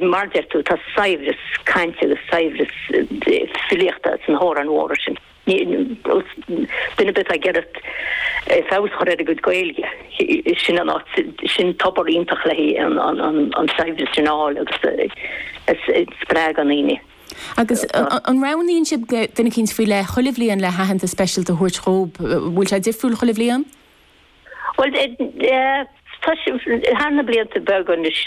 Mar a deir tú, tá saibhreas cainte agus saibhreas filíochta sna hamhráin mhóra sin. Duine ar bith atá ag iarraidh feabhas a chur ar a gcuid Gaeilge, sin an áit, sin tobar iontach le haghaidh an saibhreas sin a fháil agus a spreagadh i ndaoine. Agus an roghnaíonn sibh duine eicínt faoi leith chuile bhliain le haitheantas speisialta a thabhairt dhób? Bhfuil sé difriúil chuile bhliain? Bhuel, thar na blianta beaga anuas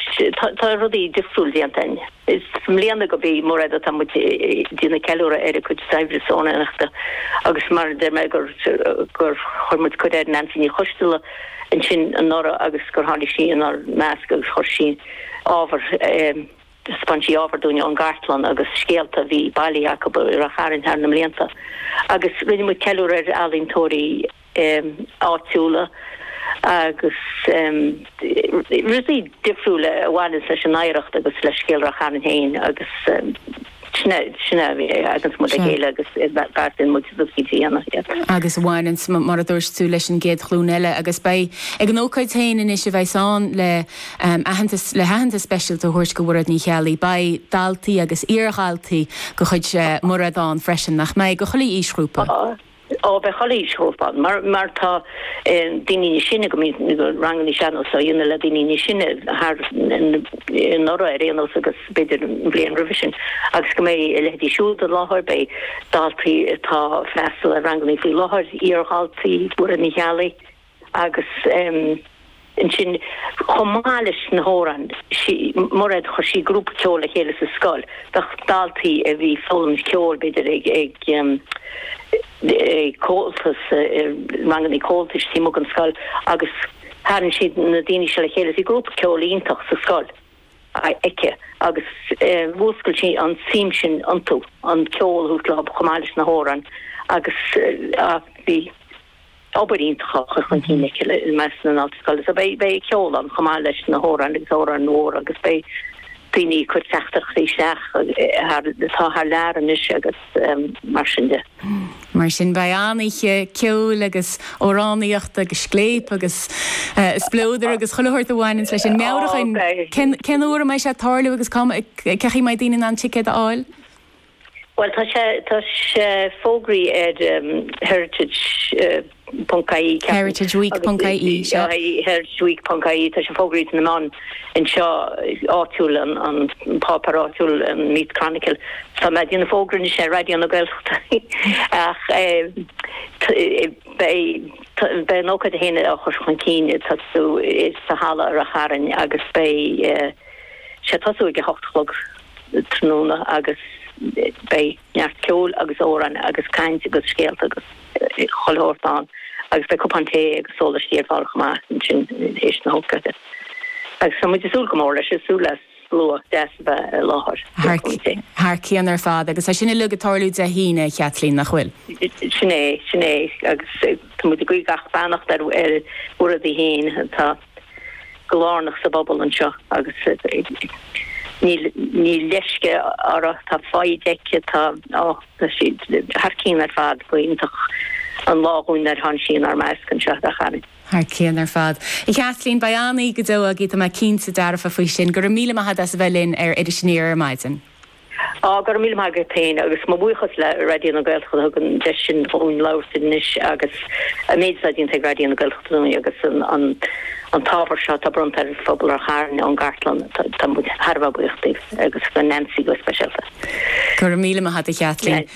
tá rudaí difriúil déanta againn. I mbliana gurb í Mairéad atá muid ag déanamh ceiliúradh ar a cuid saibhreas amhránaíochta agus mar a deir mé gur chuir muid cuireadh ar Neansaí Ní Choisdealbha ansin anuraidh agus gur tháinig sí inár measc agus chuir sí ábhar, thaispeáin sí ábhar dúinn ón gcartlann agus scéalta a bhí bailithe acu i Ráth Chairn thar na mblianta agus rinne muid ceiliúradh ar ealaíontóirí. áitiúla agus rudaí difriúla a bhaineanns leis an oidhreacht agus le scéal Ráth Chairn féin agus sin an chaoi a dtagann muid le chéile agus beartaíonn muid rud éigin a dhéanamh iad. Agus a bhaineanns, mar a dúirt tú, leis an gcéad ghlúin eile agus beidh ag an ócáid féin anois a bheas ann le aitheantas, le haitheantas speisialta a thabhairt do Mhairéad Ní Cheallaigh, beidh daltaí agus iardhaltaí de chuid Mhairéad ann freisin, nach mbeidh? Ó chuile aoisghrúpa. Ó beidh chuile aoisghrúpa ann mar mar tá daoine níos sine go mbíonn na ranganna sean-nós á dhéanamh le daoine níos sine thar anuraidh ar aon nós agus b'fhéidir an bhliain roimhe sin agus go mbeidh a leithéidí siúd i láthair, beidh daltaí atá ag freastal ar ranganna faoi láthair, iardhaltaí Mhairéad Ní Cheallaigh. agus ansin chomh maith leis na hamhráin Mairéad chuir sí grúpa ceoil le chéile sa scoil do dhaltaí a bhí ag foghlaim ceoil b'fhéidir ag Comhaltas ranganna Comhaltais timpeall an scoil agus tharraing siad na daoine seo le chéile bhí grúpa ceoil iontach sa scoil aici agus mhúscail sí an tsuim sin iontu an ceol chomh maith leis na hamhráin agus bhí obair iontach á chur chun cinn aici i measc na ndaltaí scoile. So beidh beidh ceol ann chomh maith leis na hamhráin agus amhráin mhór agus beidh daoine ag cur teachtaireachtaí isteach thar atá thar lear anois agus mar sin de. Mar sin beidh an-oíche ceoil agus amhránaíochta agus scléipe agus spleodair agus chuile shórt a bhaineanns leis sin. Meabhraigh dúinn cén cén uair a mbeidh sé ag tarlú agus cá mbeidh, cén chaoi a mbeidh daoine in ann ticéid a fháil? Bhuel, tá sé, tá sé fógraithe ar heritage ponc ie, ceapaim. Heritage Week ponc ie, sea. Heritage Week ponc ie, tá sé fógraithe sna meáin anseo áitiúil, an páipéar áitiúil, an Meath Chronicle, tá mé a' déanamh fógra anois ar Raidió na Gaeltachta ach beidh, beidh an ócáid féin á chur chun cinn ag tosú sa halla i Rath Chairn agus beidh sé ag tosú ag a hocht a chlog. tráthnóna agus beidh neart ceoil agus amhráin agus caint agus scéalta agus chuile shórt ann agus beidh cupán tae agus sólaistí ar fáil chomh maith ansin théis na hócáide agus tá muid ag súil go mór leis, ag súil le slua deas a bheith i láthair. Thar cinn ar fad agus tá sin uilig ag tarlú Dé hAoine, a Chaitlín, nach bhfuil? Sin é, sin é agus tá muid ag guí gach beannacht ar bhur rudaí féin. Tá. go lárnach sa bpobal anseo agus níl níl leisce orthu, tada faoi, tá sí thar cinn ar fad b'iontach an lá dhúinn ar tháinig sí inár measc anseo i Ráth Chairn. Thar cinn ar fad. A Chaitlín, beidh an-oíche go deo agaí, tá mé cinnte dearfa faoi sin. Go raibh míle maith agat as a bheith linn ar Iris Aniar ar maidin. Go raibh míle maith agat féin agus mo bhuíochas le Raidió na Gaeltachta a thug an deis sin dhúinn labhairt anois agus an méid atá déanta ag Raidió na Gaeltachta dúinn agus an t-ábhar seo atá bronnta ar phobal Ráth Chairn ón gCartlann. Tá muid thar a bheith buíoch daoibh agus do Nancy go speisialta. Go raibh míle maith agat, a Chaitlín.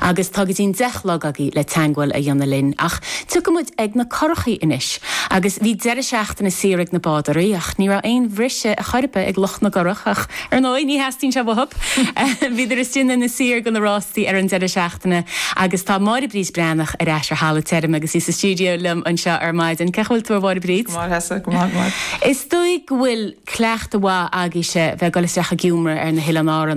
Agus tá go dtín deich a chlog agaí le teangmháil a dhéanamh linn ach tiocfaimid ag na curachaí anois. Agus bhí deireadh seachtaine saor ag na bádóirí ach ní raibh aon bhriseadh ar chor ar bith ag lucht na gcurach ach, ar ndóigh, ní theastaíonn sé uathub. Bhíodar istigh in Inis Oírr ag na rástaí ar an deireadh seachtaine agus tá Máire Bríd Breathnach ar ais ar thalamh tirim agus í sa stiúideo liom anseo ar maidin. Cén chaoi a bhfuil tú, a Mháire Bríd? Go maith leisce, go maith, go maith. Is dóigh go bhfuil cleachtadh maith agaí-se bheith ag dul isteach ag iomramh ar na hOileáin Árannach.